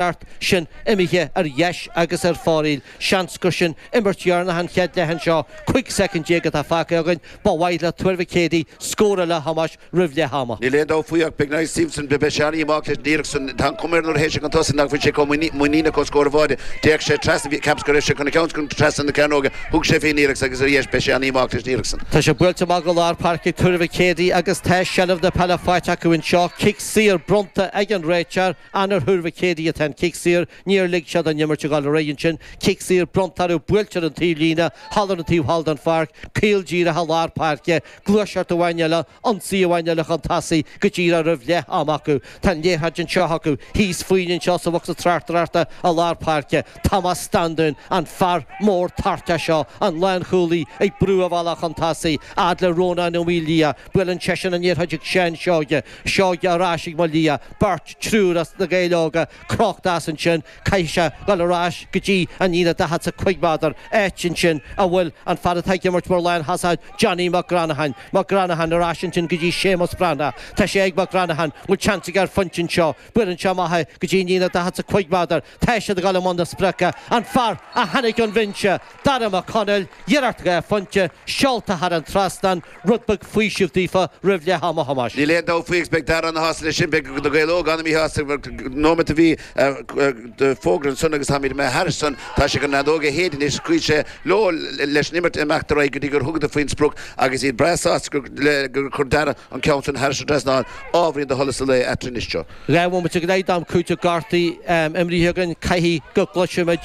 iarracht sin imithe ar dheis agus ar fóraoil, seans gur sin imirt dheireanach an chéad leath anseo, 15 soicind atá fágtha againn, ba mhaith le Tuar Mhic Éadaigh scór eile a Thomáis roimh leath ama. Níl aon dabht faoi ach beidh Naomh Simpson beidh sé ana dhíomách leis an iarracht san. Tá an chuma air nuair a théann sé chun tosaigh nach bhfuil sé chomh muiníneach chun scór a bhaint. D'fhéach sé trasna, cheapas go raibh sé chun an ceann a chur trasna na cearnóige, thug sé fé an iarracht agus ar dheis beidh sé ana dhíomách leis an iarracht san. Tá sé buailte amach go lár páirce ag Tuar Mhic Éadaigh agus tá seilbh na peile faighte acu anseo, cic saor bronnta ag an réiteoir, An ar Thuar Mhic Éadaigh atá an cic saor? Níor lig siad an imirt a ghabhail ar aghaidh ansin. Cic saor bronnta orthu, buailte ar an taobh líne, thall ar an taobh thall den pháirc, caol díreach i lár páirce, gluaiseacht amháin eile, ionsaí amháin eile chun tosaigh, go díreach roimh leath ama acu. Tá an liathróid anseo acu, thíos, fúinn anseo, sa bhocsa tráchtaireachta i lár páirce. Tomás Standún, an fear mór téagartha seo, an lán chúlaí, ag brú a bhealach chun tosaigh, fhad le Rónán Ó Maoildhia. Buaileann seisean an liathróid ag Seán Seoighe. Seoighe ar ais ag Ó Maoildhia, beirt, triúr as Na Gaeil Óga crochta as ansin. Caithfidh sé dul ar ais go dtí an líne 45 méadar, áit ansin a bhfuil an fear atá ag imirt mar lán thosach, Johnny Mac Granatháin. Mac Granatháin ar ais ansin go dtí Séamus Breathnach. Tá sé ag Mac Granatháin, bhfuil seans aige ar phointe anseo? Buaileann sé amach é go dtí an líne 45 méadar. Tá siad ag gabháil i mbun na sprice, an fear a tháinig ón bhinse, Darragh McConnell, iarracht aige ar phointe, seolta thar an trasnán, rud beag faoisimh daofa roimh leath ama a Thomáis. Níl aon dabht faoi agus beidh Darragh ana shásta le sin, beidh na Gaeil Óga ana mhíshásta mar dhá nóimeat a bhí an fógra ansan agus táimíd imithe thairis san, tá sé gan an fheadóg a shéideadh anois, scaoil sé leo leis an imirt a imeacht ar aghaidh go dtí gur thugadar faoin sprioc agus iad breá sásta gur chuir Darragh an ceann san thar an trasnán, ábhairín do sholas an lae eatarthu anois. Dhá bhomaite go leith d'am cúitimh gortaithe imrithe againn, caithfidh go gcloisfimid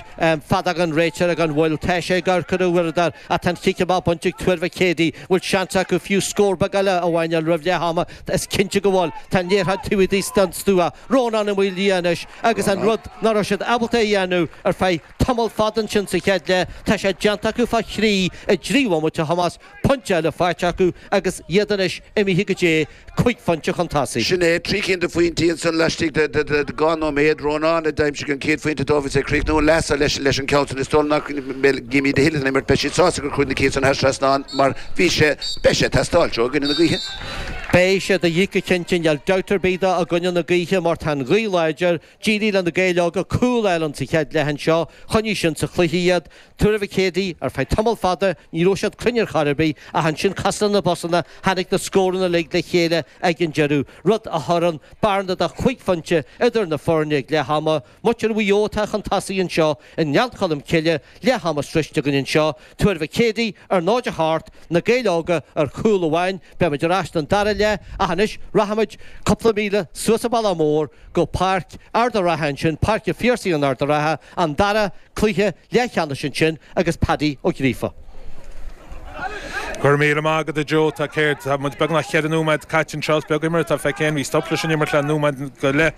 feadóg an réiteora gan mhoill. Tá sé ag amharc ar a uaireadóir, ach tá an cic amach bainte ag Tuar Mhic Éadaigh. Bhfuil seans acu fiú scór beag eile a mháinneáil roimh leath ama? Is cinnte go bhfuil. Tá an liathróid taobh thíos den stua Rónán Ó Maoildhia anois, agus an rud ná raibh siad ábalta a dhéanamh ar feadh tamall fada ansin sa chéad leath, tá sé déanta acu fá thrí i dtrí bhomaite, a Thomáis. pointe eile faighte acu agus iad anois imithe go dtí cúig phointe chun tosaigh. Sin é, trí cinn de phointí ansan laistigh de dhá nóiméad. Rónán a d'aimsigh an chéad phointe dóibh is é ag críochnú an leatha leis an ceann san. Is dóigh nach mbeidh Jimmy the Hill san imirt, beidh siad sásta gur chuaigh na cinn san thar trasnán mar bhí sé, beidh sé ag teastáil uathu i gcoinne na gaoithe. Beidh sé de dhíth go cinnte, níl dabht ar bith de i gcoinne na gaoithe mar tá an ghaoth láidir. D'éirigh le na Gaeil Óga cúl a fháil sa chéad leath anseo, choinnigh sin sa chluiche iad, Tuar Mhic Éadaigh, ar feadh tamall fada ní raibh siad cruinn ar chor ar bith ach ansin cosúil leis na busanna, tháinig na scóranna uilig le chéile ag an deireadh, rud a chuireann bearna de chúig phointe idir na foirne ag leath ama. Muintir Mhaigh Eo atá chun tosaigh anseo i nGleann Cholm Cille, leath ama sroichte againn anseo, Tuar Mhic Éadaigh ar náid a seacht, na Gaeil Óga ar chúl amháin, beimid ar ais don dara leath ach anois rachaimid cúpla míle suas an Bealach Mór go Páirc Ard a' Rátha ansin, Páirc a' Phiarsaigh in Ard a' Rátha, an dara cluiche leathcheannais ansin agus Paddy Ó Gríofa. Go raibh míle maith agat a Joe, tá céard, tá muid beagnach cheithre nóiméad caite anseo, is beag imirt atá feicthe againn, bhí stop leis an imirt le nóiméad go leith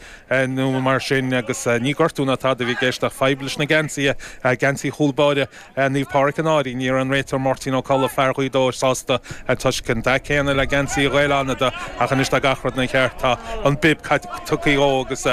nó mar sin agus ní gortú ná tada a bhí i gceist ach fadhb leis na geansaithe, geansaí chúl báire Naomh Pádraic an Fhairche ní raibh an réiteoir Máirtín Ó Colla, fear Ghaoth Dobhair, sásta toisc an dath céanna le geansaí Ghaeil Fhánada ach anois tá gach rud ina cheart, tá an bib tugtha dhó agus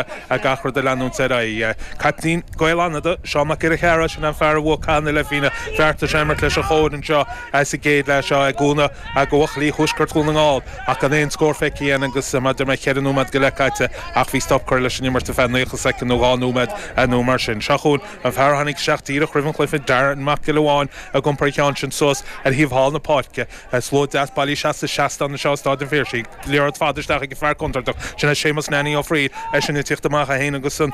gach rud ag leanúint ar aghaidh. Caiptín Ghaeil Fhánada, Seán Mac Giolla Chearra, sin é an fear a bhuaigh caitheamh na leithphingne, bheartaigh sé imirt leis an gcóir anseo sa gcéad leath seo i gcoinne bhuachaillí Thuaisceart Dhún na nGall ach gan aon scór feicthe againn agus mar a deir mé cheithre nóiméad go leith caite ach bhí stop curtha leis an imirt ar feadh naocha soicind nó dhá nóiméad nó mar sin. Seo chugainn. An fear a tháinig isteach díreach roimh an chluiche, Darren Mac Giolla Bháin, ag iompar an cheann sin suas ar thaobh thall na páirce. Slua deas bailithe seasta seastán anseo i Stáid an Phiarsaigh. Liathróid fada isteach ag an fear contúirteach sin é Séamus Nanny Ó Fríl, eisean ag tiocht amach é féin agus an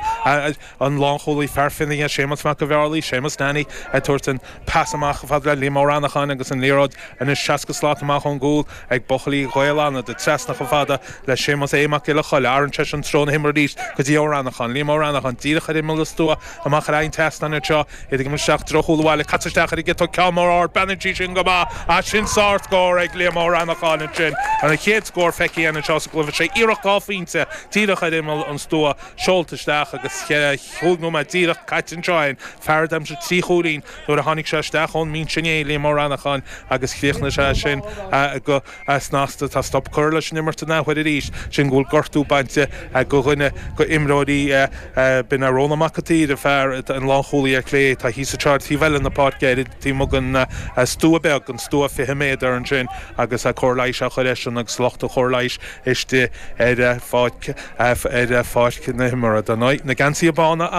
lánchúlaí fear Fionnaithe Séamus Mac an Bheárlaí. Séamus Nanny ag tabhairt an pas amach fad le Liam Ó Reanacháin agus an liathróid anois seasca slat amach ón gcúl. ag buachaillí Ghaeil Fhánada trasna chomh fada le Séamus A. Mac Giolla Choille, athraíonn seisean treo na himeartha arís go dtí Ó Reanacháin, Liam Ó Reanacháin, díreach ar imeall a stua, amach ar aghaidh an tseastáin anseo, iad ag imirt isteach i dtreo chúl an bhaile, caite isteach ar an gciotóg, ceann mór ard, breathnaíonn sí sin go maith, á sin sár-scór ag Liam Ó Reanacháin ansin, an chéad scór feicthe againn anseo sa gcluife, sé iarracht dhá phointe díreach ar imeall an stua, seolta isteach agus cheithre, chúig nóiméad díreach caite anseo, an fear a d'aimsigh trí chúilín, Nuair a tháinig sé isteach ón mbinse inné, Liam Ó Reanacháin, agus chríochnaigh sé sin go snasta, tá stop curtha leis an imirt an athuair arís, sin go bhfuil gortú bainte go dhuine go imreoirí. B'in é Rónán Mac an tSaoir, an fear, an lánchúlaí ar chlé, tá thíos i dtreo taobh eile na páirce ar taobh amuigh den stua beag, an stua 20 méadar ansin agus cóir leighis á chur airsean agus lucht an chóir leighis istigh ar pháirc na himeartha. Na geansaithe bána a.